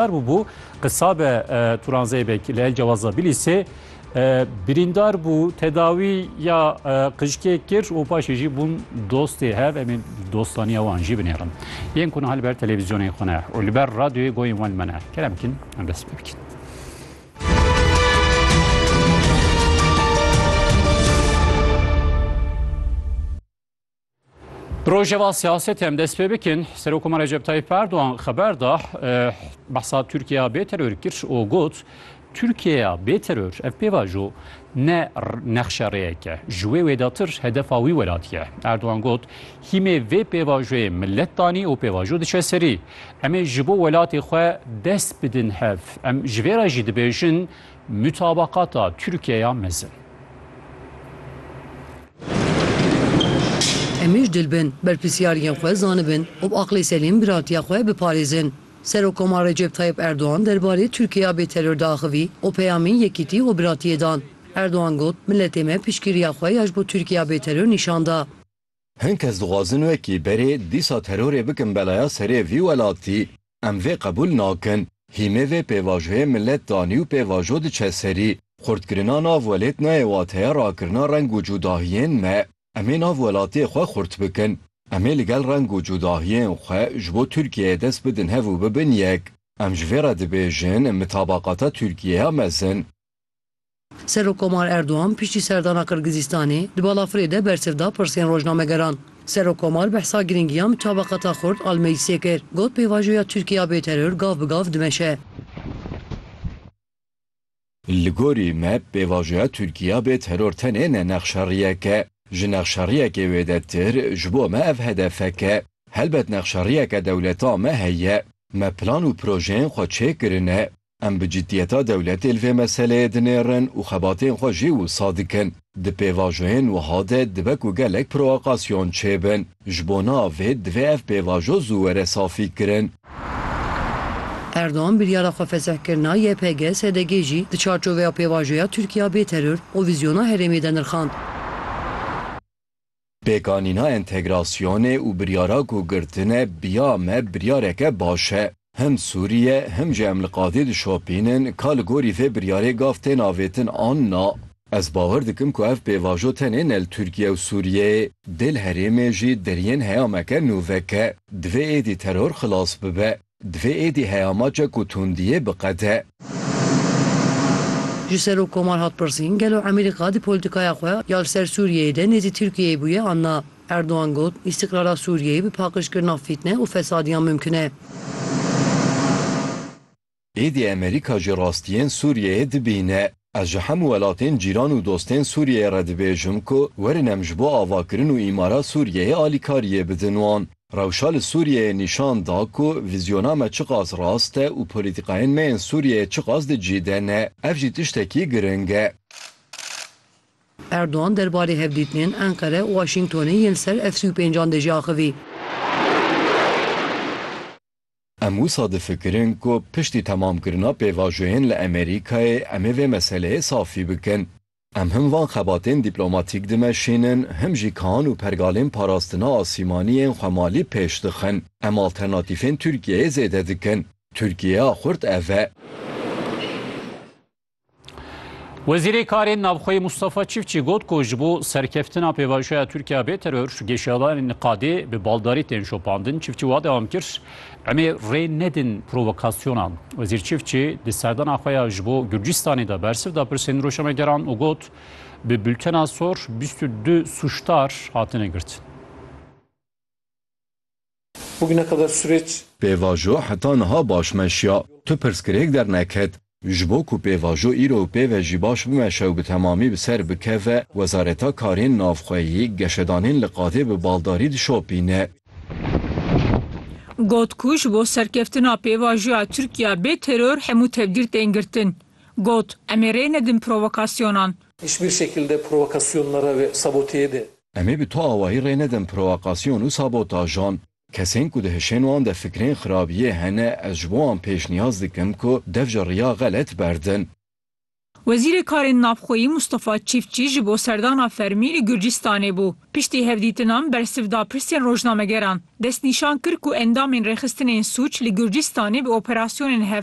Kar bûbû qisa be Turan Zeybek li El Cewaza Bilîsê birîndar bû, tedawî ya qijkê kir û paşê jî bûn dostê hev. Em ê dostaniya wan jî binêrin. Yên ku niha li ber televîzyonên xwe ne û li ber radyoyê goyên wan li me ne, kerem bikin em dest pê bikin. Rojeva siyasetê em dest pê bikin Serokoma Recep Tayyip Erdoğan xeber da behsa Tirkiyeya bê teror kir û got Tirkiyeya bê teror ev pêvajo ne nexşe rêyeke ji wê wêdatir hedefa wî welatiye. Erdoğan got hîmê vê pêvajoyê millet danî û pêvajo diçe serî. Em ê ji bo welatê xwe dest bidin hev. Em ji vê re jî dibêjin Mutabakata Tirkiyeya mezin. Em êj dil bin, berpirsyariyên xwe zanibin û bi aqlê selîm biratiya xwe biparêzin. Serokkoma Recep Tayyip Erdogan derbarê Tirkiyeya bêteror diaxivî û peyamên yekîtî û biratiyê dan. Erdogan got, Miletê me piştgiriya xwe ya ji bo Tirkiyeya bêteror nîşan da. Hin kes dixwazin wekî berê dîsa terorê bikin belaya serê vî welatî. Em vê qebûl nakin. Hîmê vê pêvajoyê milet danî û pêvajo diçe serî. Xurtkirina nav welêt nayê wateya rakirina reng û cûdahiyên me. Em ê nav welatê xwe xurt bikin. Em ê li gel reng û cûdahiyên xwe ji bo Tirkiyeyê dest bidin hev û bibin yek. Em ji vê re dibêjin mitabaqata Tirkiyeya mezin. Serokkomar Erdogan piştî serdana Qirgizîstanê di balafirê de bersiv da pirsên rojnamegeran. Serokkomar behsa girîngiya mitabaqata xurt al meclîsê kir, got pêvajoya Tirkiye ya bêteror gav bi gav dimeşe. Li gorî me pêvajoya Tirkiye ya bêteror tenê ne nexşeriyek e. Ji nexşeriyekê wêdetir ji bo me ev hedefek e. Helbet nexşeriyeke dewleta me heye. Me plan û projeyên xwe çêkirine. Em bi ciddiyeta dewletê li vê meseleyê dinêrin û xebatên xwe jî wisa dikin. Di pêvajoyên wiha de dibe ku gelek provokasyon çêbin. Ji bo navê divê ev pêvajo zû were safîkirin. Erdogan biryara xwe fesihkirina YPG-SDG jî di çarçoveya pêvajoya Tirkiya bê teror û vîzyona herêmê de nirxand. Pêkanîna entegrasyonê û biryara ku girtine biya me biryareke baş e. Him Sûriye him jî em li qadê dişopînin ka li gorî vê biryarê gav tên avêtin an na. Ez bawer dikim ku ev pêvajo tenê ne li Tirkiye û Sûriyeyê, dê li herêmê jî deriyên heyameke nû veke. Divê êdî teror xilas bibe. Divê êdî heya ma çek û tundiyê biqede. Ji Serokkomar hat pirsîn gelo Emîrê Qadi polîtîkaya xwe ya li ser Sûriyeyê de nêzî Tirkiyeyê bûye an na. Erdogan got, Îstîqrara Sûriyeyê bi paqijkirina fîtne û fesadiyan mimkin e. Êdî Emerîka jî rastiyên Sûriyeyê dibîne. Ez ji hemû welatên cîran û dostên Sûriyeyê re dibêjim ku werin em ji bo avakirin û îmara Sûriyeyê alîkariyê bidin wan. Rewşa li Sûriyeyê nîşan da ku vîzyona me çiqas rast e û polîtîkayên me yên Sûriyeyê çiqas di cî de ne. Ev jî tiştekî giring e. Erdogan derbarê hevdîtinên Enqere û Waşîngtonê yên li ser F sî û pênc an de jî axivî. Em wisa difikirin ku piştî temamkirina pêvajoyên li Amerîkayê em ê vê meseleyê safî bikin. Em him van xebatên dîplomatîk dimeşînin, him jî kihan û pergalên parastina asîmanî yên xwemalî pêş dixin. Em alternatîfên Tirkiyeyê zêde dikin. Tirkiyeya xurt ev e. Wezîrê Karên Navxweyî Mustafa Çiftçî got ku ji bo serkeftina pêvajoya Tirkiya bê teror, geşadanên niqadê bi baldarî tên şopandin. Çiftçî wa dewam kir, Emê rê nedin provokasyonan. Wezîr Çiftçî di serdana xwe ya ji bo Gurcistanê de bersiv da pirsên rojnamegeran û got, Bi bultena sor bîst û du sûcdar hatine girtin. Pêvajo heta niha baş meşiya. Tu pirsgirêk derneket. Ji bo ku pêvajo îro û pêve jî baş bimeşe û bi temamî bi ser bikeve, Wezareta Karên Navxweyî geşedanên li qadê bi baldarî dişopîne. Got ku ji bo serkeftina pêvajoya Tirkiye bê teror hemû tedbîr tên girtin. Got, Em ê rê nedin provokasyonan. Em ê bi tu awahî rê nedin prowakasyon û sabotajan. Kesên ku di hişên wan de fikrên xirabiyê hene ez ji bo wan pêşniyaz dikim ku dev ji riya xelet berdin. Wezîrê Karên Navxweyî Mustafa Çîftçî ji bo serdana fermî li Gurcistanê bû. Piştî hevdîtinan bersiv da pirsên rojnamegeran. Destnîşan kir ku endamên rêxistinên sûc li Gurcistanê bi operasyonên hev